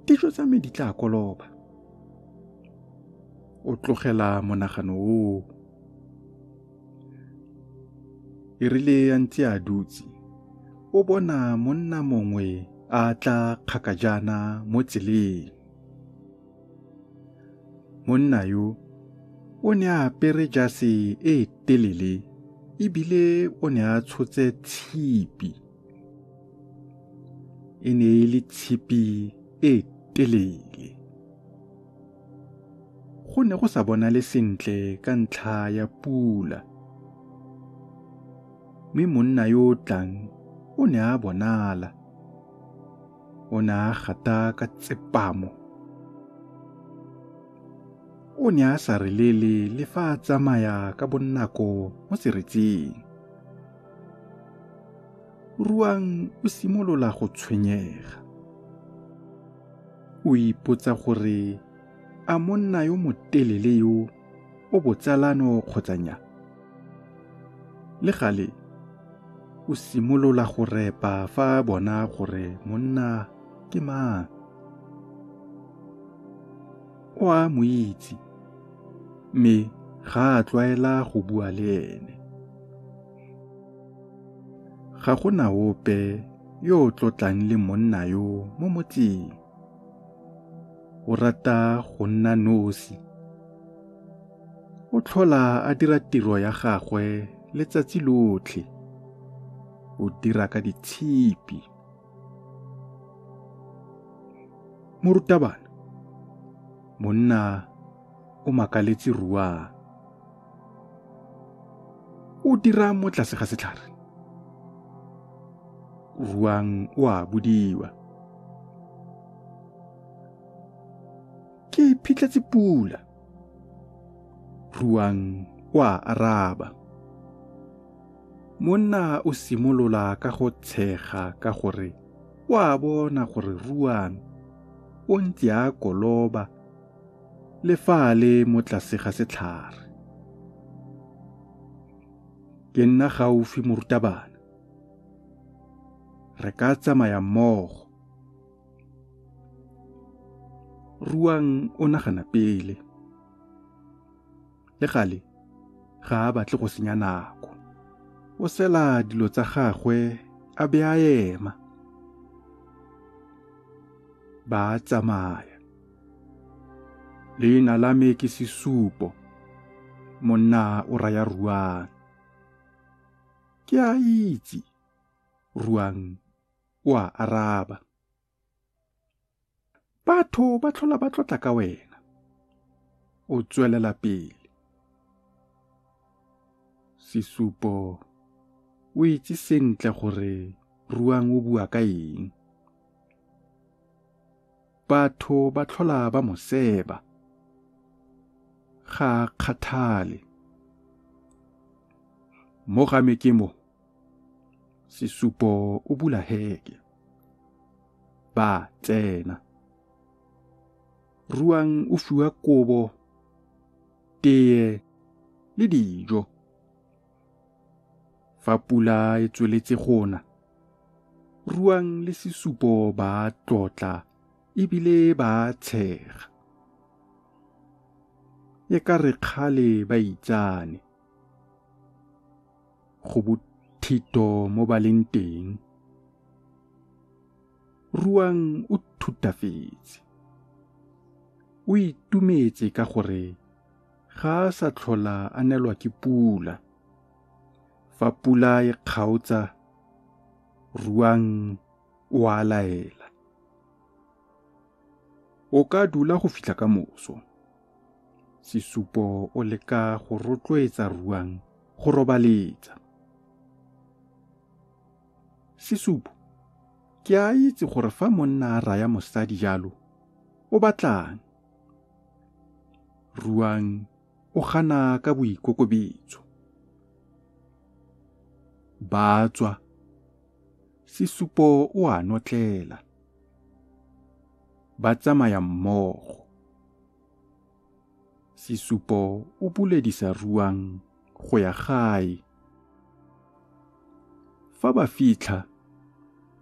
dijo tsa me di tla koloba o tlogela monagano oo e rile a ntse a dutse o bona monna mongwe a tla kgakajana mo tseleng monna yo o ne a apere jase e telele ebile o ne a tshotse tshipi e ne e le tshipi e telele go ne go sa bonale sentle ka ntlha ya pula mme monna yo o tlang o ne a bonala o ne a gata ka tsepamo o ne a sa relele le fa a tsamaya ka bonako mo seretseng Ruang o simolola go tshwenyega. O ipotsa gore a monna yo motelele yo o botsalano kgotsa nya. Le gale o simolola go repa fa bona gore monna ke mang. o a mo itse mme ga a tlwaela go bua le ene. Ga go na ope yo o tlotlang le monna yo mo motseng. O rata go nna nosi. O tlhola a dira tiro ya gagwe letsatsi lotlhe. O dira ka ditshipi. morutabana monna o makaletse ruang o dira mo tlase ga setlhare ruang o a bodiwa ke phitletse pula ruang o a araba Monna o simolola ka go tshega ka gore o a bona gore Ruane o ntse a koloba le fa a le mo tlase ga setlhare. Ke nna gaufi morutabana. Re ka tsamaya mmogo. Ruang o nagana pele. le gale ga a batle go senya nako o sela dilo tsa gagwe a be a ema ba tsamaya leina la me ke sesupo monna o raya ruang ke a itse ruang o a araba batho ba tlhola ba tlotla ka wena o tswelela pele sesupo o itse sentle gore ruang o bua ka eng batho ba tlhola ba mo seba ga a kgathale mo ga mekemo Sesupo o bula heke. Ba tsena. Ruang o fiwa kobo, teye le dijo. Fa pula e tsweletse gona, Ruang le Sesupo ba tlotla ebile ba tshega. E ka re kgale ba itsane. go bothito mo ba leng teng ruang o thutafetse o itumetse ka gore ga a sa tlhola a nelwa ke pula fa pula e kgaotsa ruang o a laela o ka dula go fitlha ka moso Sesupo o leka go rotloetsa Ruang go robaletsa. Sesupo, ke a itse gore fa monna a raya mosadi jalo, o batlang? Ruang o gana ka boikokobetso. Ba tswa. Sesupo o a notlela. ba tsamaya mmogo. Sesupo o buledisa ruang go ya gae. Fa ba fitlha,